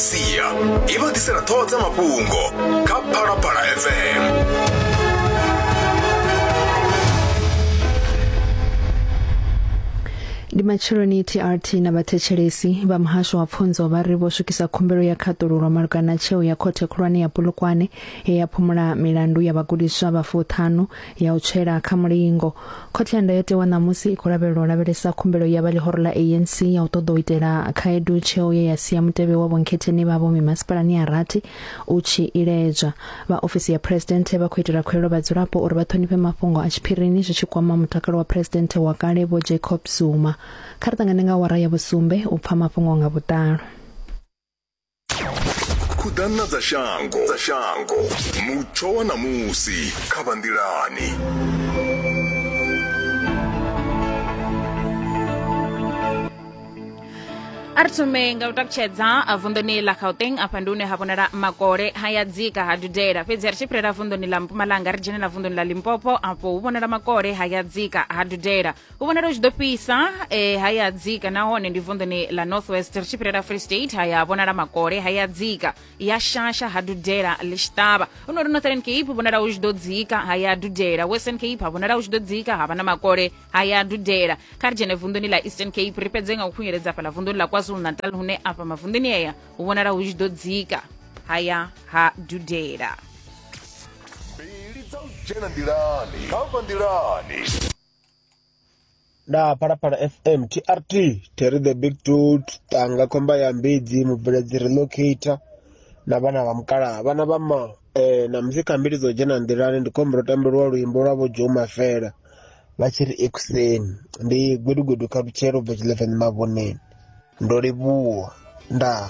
sia i vha ḓisela ṱhoho dza mafhungo kha phalaphala fm ndi matsheloni trt na vhathetshelesi vha muhasho wa pfunzo vha ri vho swikisa khumbelo ya khaṱululo malugana na tsheo ya khothe khulwane ya pulukwane he ya phumula milandu ya vhagudiswa vha fuṱhanu ya u tswela kha mulingo khothe ya ndayotewa ṋamusi i khou lavhelelwa u lavhelesa khumbelo ya vha ḽihoro ḽa anc ya u ṱoḓa u itela khaedu tsheo ye ya sia mutevhe wa vhonkhetheni vha vho mimasipalani ya rathi u tshi iledzwa vha ofisi ya phuresidennde vha khou itela khuelo vhadzulapo uri vha ṱhonifhe mafhungo a tshiphirini zwi tshi kwama mutakalo wa phuresidennde wa kale vho jacob zuma kha ri ṱangane nga wara ya vhusumbe u pfa mafhungo nga vhuḓalo khuḓana dza shango dza shango mutsho wa ṋamusi kha vha nḓilani a ri thome nga u takutshedza vunḓuni ḽa gauteng afha ndi hune ha vhonala makole haya dzika ha dudela fhedzi ri tshi fhirela vunḓuni ḽa mpumalanga ri dzhene na vunḓuni ḽa limpopo afho hu vhonala makole haya dzika ha dudela u vhonala u tshi ḓo fhisa eh, ha ya dzika nahone ndi vunḓuni la northwest ri tshi fhirela free state ha ya vhonala makole ha ya dzika ya shasha ha dudela ḽi tshi ṱavha u no ri northern cape vhonala u tshi ḓo dzika ha ya dudela western cape ha vhonala u tshi ḓo dzika ha vha na makole ha ya dudela kha ri dzhene vunḓuni la eastern cape ri fhedze nga u khunyeledza fhaḽa vunḓuni la kwazulu natal hune afha mavunḓuni eya hu vhonala hu tshi ḓo dzika ha ya ha dudela mbili dza u dzhena nḓilani kha vha nḓilani nda phalaphala fm trt terry the big dud tanga khomba ya mbidzi mubveledzi relocator na vhana vha mukalaha vhana vha ma eh, na musi khambili dzo dzhena nḓilani ndi khombo ro tambeliwa luimbo lwa vho joe mafela vha tshi ri ekuseni ndi gwedugudu kha lutshelo bva tshilevenzi mavhoneni ndo livhuwa ndaa